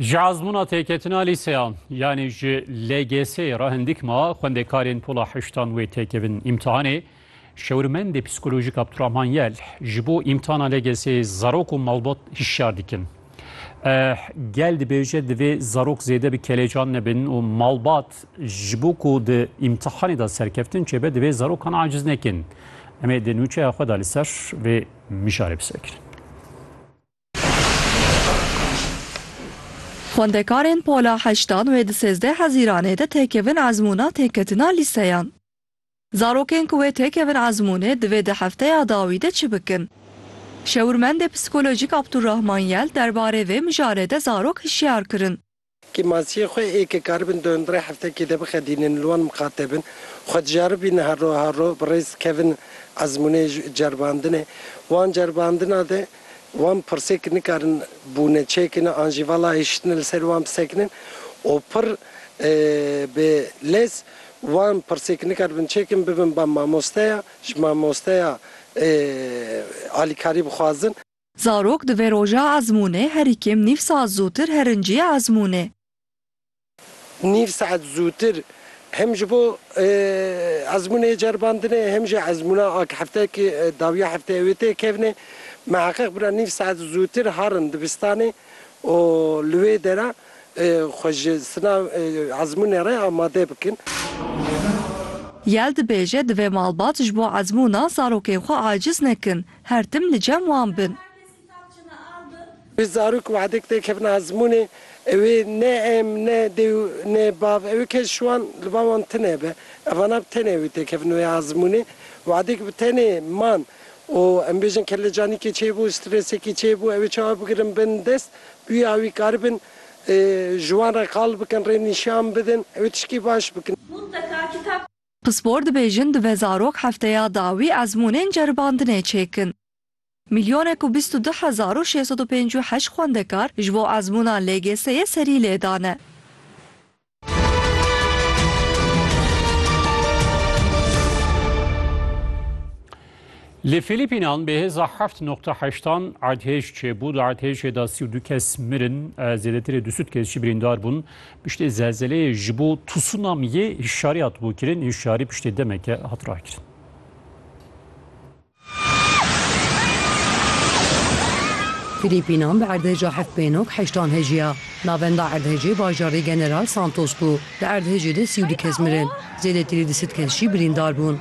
Ji azmûna têketina lîseya yanî ji LGS'ê re hindik ma xwendekarên pola heştan wê têkevin îmtihanê. Şewirmendê psîkolojîk Abdurahman Yel ji bo îmtihana LGS'ê zarok û malbat hişyar dikin. Eh, gel dibêje divê zarok zêde bi kelecan nebin û malbat ji bo ku di îmtihanê de serkeftin çêbe divê zarokan aciz nekin. Em ê di nûçeya xwe de li ser vê mijarê bisekirin. Xwendekarên pola heştan wê di sêzdeh hezîranê de têkevin ezmûna têketina lîseyan. Zarokên ku wê têkevin ezmûnê divê di hefteya dawî de çi bikin? Şêwirmendê psîkolojîk Abdulrahman Yel derbarê vê mijarê de zarok hişyar kirin. Kî masiyê xwe ê ke karibin di hundirê heftekê de bixedînin li wan miqate bin, xwe diceribînin her roj her roj bi rêz kevin ezmûnê ceribandinê. Wan ceribandina de wan pirsêk nikarin bûne çêkin an jî vala hişitine li ser wan bisekinin û pir bi lez wan pirsêk nikaribin çêkin bibin ba mamosteya, ji mamosteya alîkarî bixwazin. Zarok di vê roja ezmûnê herî kêm nîv saet zûtir herincîyê ezmûnê. Nîv saet zûtir hem ji bo ezmûnê yê ceribandinê hem jî ezmûna a hefteyekê dawiya hefteyê wê tê kevnê miheqeq bira nîv saet zûtir harin dibistanê û li wê dera xwe ji sina ezmûnê re amade bikin. Yel dibêje divê malbat ji bo ezmûna zarokên xwe aciz nekin. Her tim li cem wan bin. Wê zarok wehdek têkevin ezmûnê ewê ne em ne dêw ne bav ewê kes ji wan li ba wan tine be evana bi tenê ewê têkevin wê ezmûnê wehdek bi tenê man û em bêjin kellecanîkê çêbû strêsekî çêbû ewê çawa bigirin bin dest bûya wî karibin ji wan re qal bikin rê nîşan bidin ewê tişkî baş bikin. Pispor dibêjin divê zarok hefteya dawî ezmûnên ceribandinê çêkin. Milyonek û bîst û du hezar û şêst sed û pênc û heşt xwendekar ji bo ezmûna LGS'yê serî lêdane. Li Fîlîpînan bi hêza heft noqta heştan erdhêj çêbû. Di erdhêjê de sî û du kes mirin, zêdetirê du sud kes jî birîndar bûn. Piştî zelzeleyê ji bo tsunamiyê hişyarî hatibû kirin. Hişyarî piştî demeke hat rakirin. Fîlîpînan bi erdhêja heft pê nok heştan hejiya. Navenda erdhêjê bajarê General Santos bû. Di erdhêjê de sî û du kes mirin, zêdetirê du sud kes jî birîndar bûn.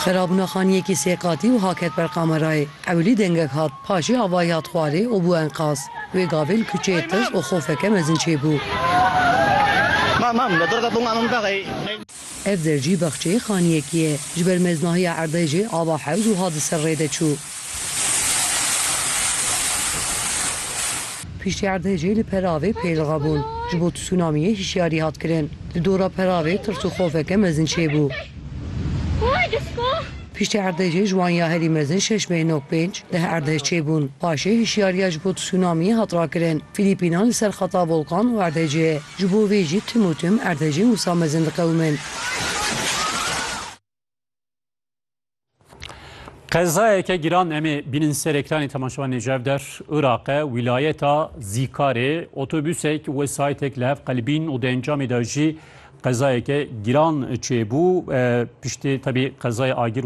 Xerabûna xaniyekî sê qatî wiha ket ber kamerayê, Ewilî dengek hat, paşê avayî hat xwarê û bû enqaz. Wê gavê li kuçeyê tirs û xofeke mezin çêbû. Ev der jî bexçeyê xaniyekî ye. Ji ber meznahiya erdê jê ava hewc wiha di ser rê de çû. Piştî erdhejê li Peravê pêlixa bûn. Ji bo tsunamiyê hişyarî hat kirin. Di dora Peravê tirs û xofeke mezin çêbû. Piştî erdhejê ji wan ya herî mezin şeş bê nok pênc, deh erdhej çêbûn. Paşê hişyariya ji bo tsunamiyê hat rakirin. Fîlîpînan li ser xeta volkan û erdhejê ye. Ji bo vê jî tim û tim erdhejên wisa mezin diqewimin. Qezayeke giran emê bînin ser ekranê temaşevan Nêcev der Iraqe wîlayeta Zîkarê otobüsek wesaytek li hev qelbîn û di encamê de jî qezayeke giran çêbû piştê tebî qezayê agir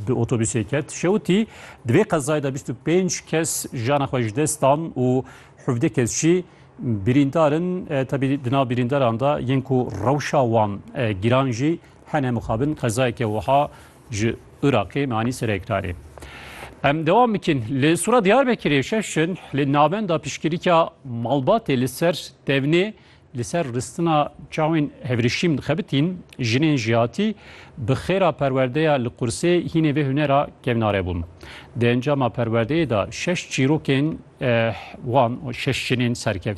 bi otobüsê ket. Şewitî di vê qezayê de 25 kes jana xwe ji dest dan û hevdê kes jî birîndarin tebî di nav birîndaran de yên ku rewşa wan giran jî Hene mixabin qezayeke wiha ji Iraqê manî serekrarê. Em dewam bikin. Li Sura Diyarbekirê şeş in li navenda piştgirîka malbatê li ser tevnê li ser ristina çawên hevrişîm dixebitîn, jinên jihatî bi xêra perwerdeya li qursê hînê vê hunera kevnare bûn. Di encama perwerdeyê de şeş çîrokên eh, wan û şeş jinên serkevtî